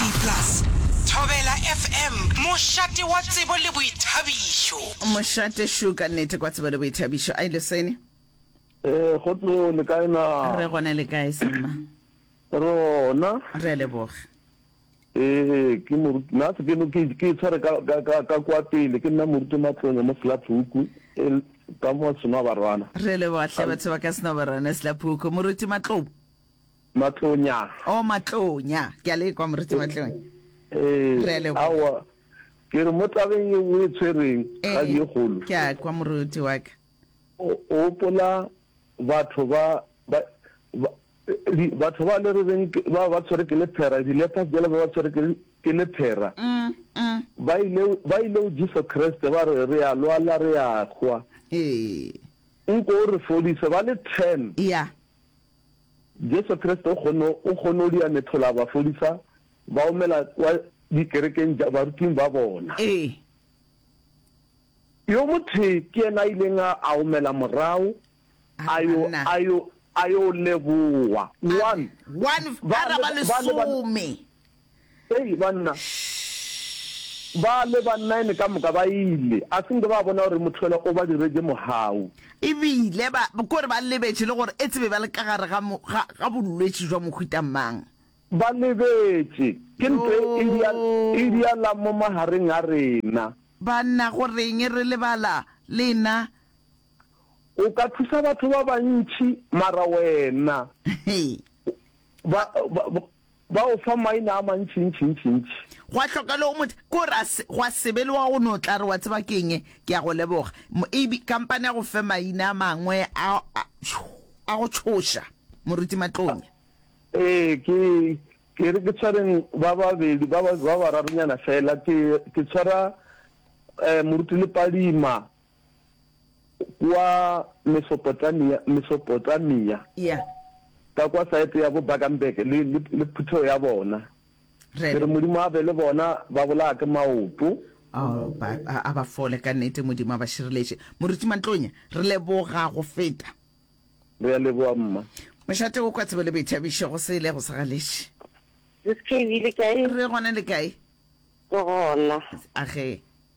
DAB+, Thobela FM, mošate wa tsebo le boithabišo. Mošate šuka nnete kwa tsebo le boithabišo. Ai Leseni. Ee, gotlo le kae na? Re gona le kae semma? Rona. Re a leboga. Ee, ke moruti na se keno ke ke tshware ka ka ka ka kwa pele ke nna moruti matlonya mo Slaphuku e ka mo seno barwana. Re leboga hle batho ba ka seno barwana Slaphuku moruti matlonya. Matlonya. Oh Matlonya, ke a le kwa Moruti Matlonya. Ee, Re a leboga. aowa, ke re mo tabeng ye o e tshwereng ga di e kgolo. Ee, ke a kwa moruti wa ka. O o gopola batho ba ba ba di batho ba le re reng ke- ba ba tshwere ke lephera, di-lepers jalo ba ba tshwere ke le- ke lephera. Mm, mm. Ba ile ba ile go Jesu Kriste ba re re a lwala re a hwa. Ee. Nko o re fodise ba le 10. Ya. Jesu Kriste o kgonne, o kgonne go dira mehlola a ba fodisa, ba omela kwa dikerekeng tša baruting ba bona. Ee. Yo mothee ke yena a ileng a, a omela morago, a yo, Amanna. a yo, a yo leboa. One. One, ba Ba le, ba le, ba le, lesome. Hei, banna! Shh! Ba le ba nine ka moka ba ile, a se nke ba bona gore Mothwela o ba diretše mohau. E bile ba, ke gore ba lebetše le gore etse be ba le ka gare ga, ga, ga bolwetši jwa mohuta mang. Ba lebetše, ke ntwa e idia, e Yoo! idialang mo magareng a rena. Banna, go reng re lebala lena? O ka thusa batho ba bantši, mara wena, Hei! ba, ba, ba. Ba go fa maina a mantšintšintšintši. Gwa hloka le o mo, ke gore a se, gwa se be le wa go no tla re, Wa tseba ke eng? Ke a go leboga. Mo, ebi, kampane a go fe maina a mangwe a, a, a go tšhoša, Moruti Matlonya. Ee, ke, ke re ke tshwareng ba babedi, ba, ba bararunyana feela. Ke, ke tshwara, eh, Moruti Lepadima. kwa Mesopotamia, Mesopotamia ya ka kwa saete ya bo Baganberg le, le, le phuthego ya bona. Ke re re Modimo a be le bona, ba bolaya ke maoto. Oh, ba, a, a ba fole ka nnete, Modimo a ba šireletše. Moruti Mantlonya, re leboga go feta. Re a leboga, mma. Mošate o kwa tsebo le boithabišo, go se ilego sa galetše. Sis Kevy, le kae? Re gona le kae? Ke gona. A ge.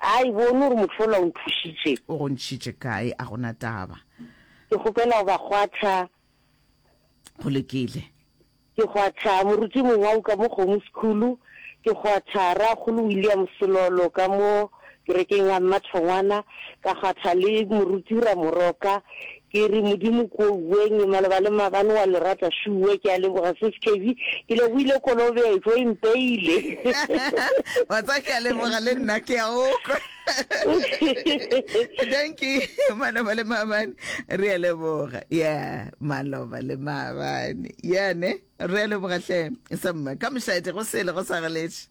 A e bone gore motho yola o nthušitše. O go ntšhitše kae, a go na taba. Ke kgopela go ba kgwatha. Go lokile. Ke kgwatha moruti Mongwau ka mo Kgomo Sekhulu, ke kgwatha Rrakgolo William Selolo ka mo kerekeng ya Mmathongwana, ka kgwatha le moruti Ramoroka, Ke re, Modimo ko uweng, maloba le mabane wa le rata sure. Ke a leboga Sis Kevy, ke lebohile kolobetšo e mpeile. Wa tseba ke a leboga le nna ke a o kwa. Thank you maloba le maabane re a leboga yeah maloba le maabane yeah ne re a leboga hle sa mma ka mošate go sele go sa galetše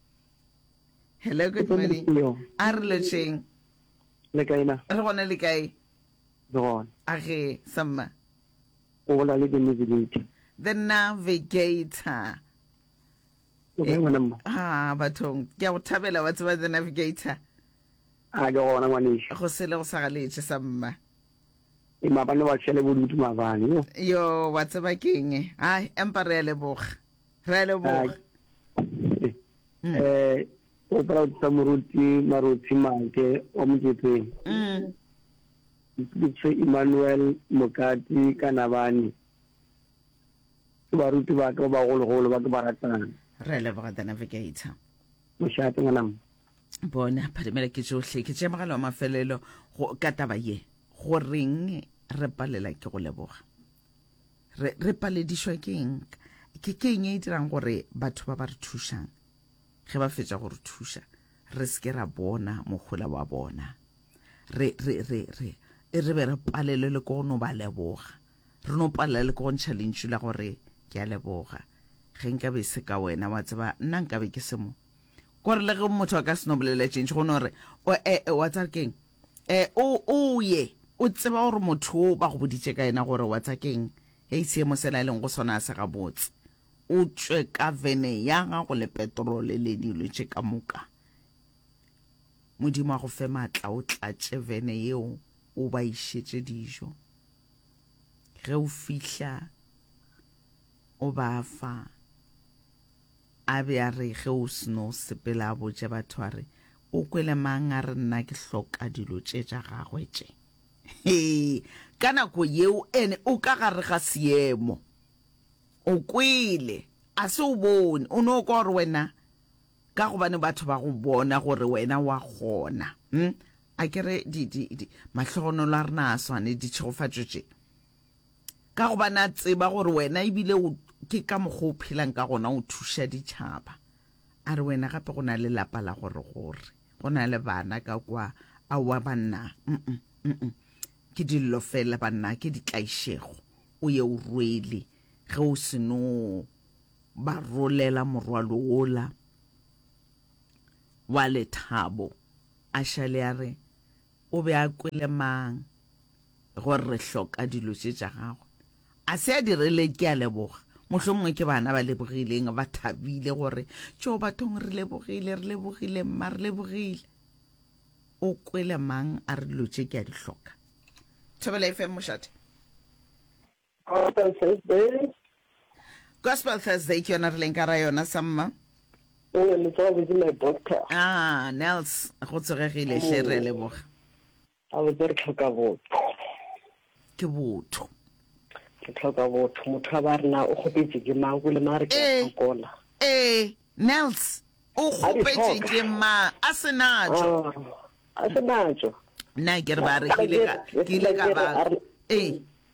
hello good morning a re lotšeng le kae na re gona le kae le gona. A ge, Selma? O bolela le The Navigator. The Navigator. O kae ngwana mma? Ha, bathong. Ke a go thabela wa tseba The Navigator. A ke gona ngwaneša. Go sele go sa galetše sa mma. E maabane wa tšhele bodutu maabane. Yo, wa tseba keng? Hai, empa re a leboga. re a leboga eh o proud sa moruti maruti make o moketeng ke Emmanuel Mokati kana bani ke baruti ba ka ba golo golo ba ke ba ratang re le ba the navigator moshate ngwana bona phadimela ke johle ke tše magalo a mafelelo go ka taba ye go reng re palela ke go leboga re, re paledišwa ke eng ke ke eng e dirang gore batho ba ba re thušang ge ba fetša go re thuša re se ke ra bona mohola wa bona re re re re e re be re palelwe le ko no ba leboga re no palela le ko go ntšha lentšu la gore ke a leboga ge nka be se ka wena wa tseba nna nka be ke semo kore le ge motho a ka seno bolela tšentši go no re o e, e wa tsara keng E, o, o ye, o tseba gore motho wo ba go boditše ka yena gore wa tsa keng? Hei, seemo sela a leng go sona a se gabotse. O tšwe ka vene ya gago le petrole le dilo tše ka moka. Modimo a go fe matla o tlatše vene yeo o ba išetše dijo. Ge o fihla, o ba fa. A be a re ge o seno sepela a botše batho a re, O kwele mang a re nna ke hloka dilo tše tša gagwe tše? Hee, ka nako yeo ene o ka gare ga seemo. O kwele, a se o bone, o no kwa gore wena ka gobane batho ba go bona gore wena wa kgona. Hm, a ke re di, di, di, mahlogonolo a rena a swane, ditšhegofatšo tše. Ka gobane a tseba gore wena e bile o, ke ka mokgwa o phelang ka gona, o thuša ditšhaba. A re wena gape go na le lapa la gore gore, go na le bana ka kwa. Aowa banna, mm-mm, mm-mm. Ke dillo fela banna, ke ditlaišego. O ye o rwele, ge o se no ba rolela morwalo wola wa lethabo. A šale a re, O be a kwele mang gore re hloka dilo tše tša gagwe? A se a dirile ke a leboga. Mohlomongwe ke bana ba lebogileng, ba thabile gore, Tšoo, bathong, re lebogile, re lebogile, mma, re lebogile. O kwele mang a re dilo tše ke a di hloka? Thobela FM, mošate. Gospel Thursday. Gospel Thursday ke yona re leng ka ra yona sa mma. O ne le tsoga botse my doctor. Ah, Nels, go tsogegile hle re leboga. A botse re tlhoka botho. Ke botho. Ke tlhoka botho. Motho wa ba rena o kgopetse ke mang go le ma re ke eh, tsokola. Eh, Nels, o kgopetse ke mang a se natso. Ah, a se natso. Nna ke re ba re ke ile ka ba. Eh.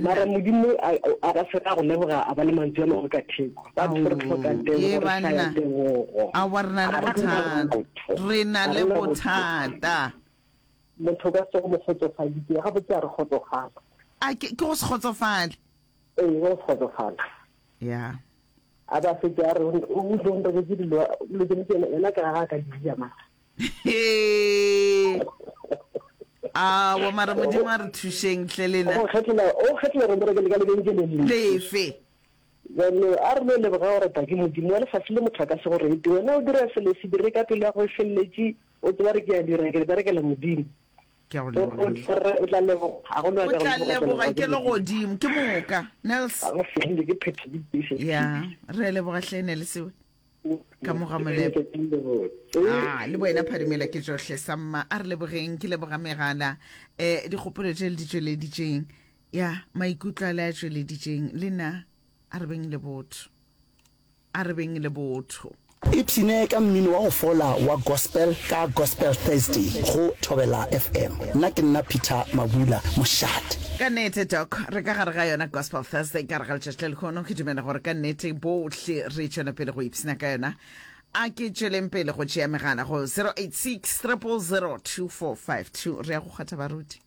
Mara Modimo a ba se ra go leboga a ba le mantswe a mangwe ka theko. Ba tho re tlhoka tebogo re sa ya tebogo. A wa rena le bothata. Rena le bothata. Motho ka se go mo kgotsofaditse ga botse a re kgotsofala. A ke go se kgotsofale. Ee go se kgotsofala. Yeah. A ba se ke a re o ntse o ntse dilo le ke ena ka ga ka di ya mara. Aowa mara modimo a re thušeng hle lena. O kgethela o kgethela re bereke le ka lebenkeleng le lefe. Jalo a re no leboga gore Paki modimo wa lefase le motho a ka se go rete wena o dira selo se dire ka pelo ya go e feleletše o tseba re ke ya dira ke re berekela modimo. Ke a go leboga re o tla leboga go lwa ka go tla leboga ke le godimo ke moka Nels. Ga go fele ke phethe di pise. Ya re leboga hle Nels we. ka mo ga molepo a le boena phadimela ke tsohle sa mma a re lebogeng ke leboga megala um dikgopolo tše le di tšweleditseng ya maikutlo a le a tšweleditseng le na a re beng le botho a re beng le botho ipshine ka mmino wa go fola wa gospel ka gospel thursday go thobela fm nna ke nna peter mabula mošate ka nete doc re ka gare ga yona gospel thursday ka re ga letšatši le lekgono ke dumela gore ka nete bo Hle re tšwela pele go ipshina ka yona. A ke tšweleng pele go tšea megala go 086 000 2452. Re ya go kgwatha baruti.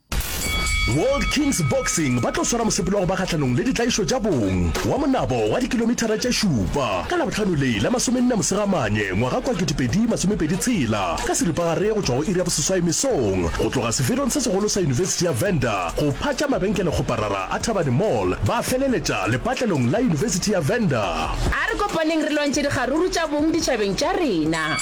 World Kings Boxing ba tlo swara mosepelo wa go ba kgahlanong le ditlaišo tša bong wa monabo wa dikilomithara tše šupa ka Labohlano le la masomenne Mosegamanye ngwaga kua 2026 ka seripagare go tšwa go iri ya boseswai mesong go tloga seferong se segolo sa yunibesithi ya Venda Go phatša mabenkelekgoparara a Thabani Mall ba feleletša lepatlelong la Yunibesithi ya Venda. A re kopaneng re lwantšhe dikgaruru tša bong ditšhabeng tša rena.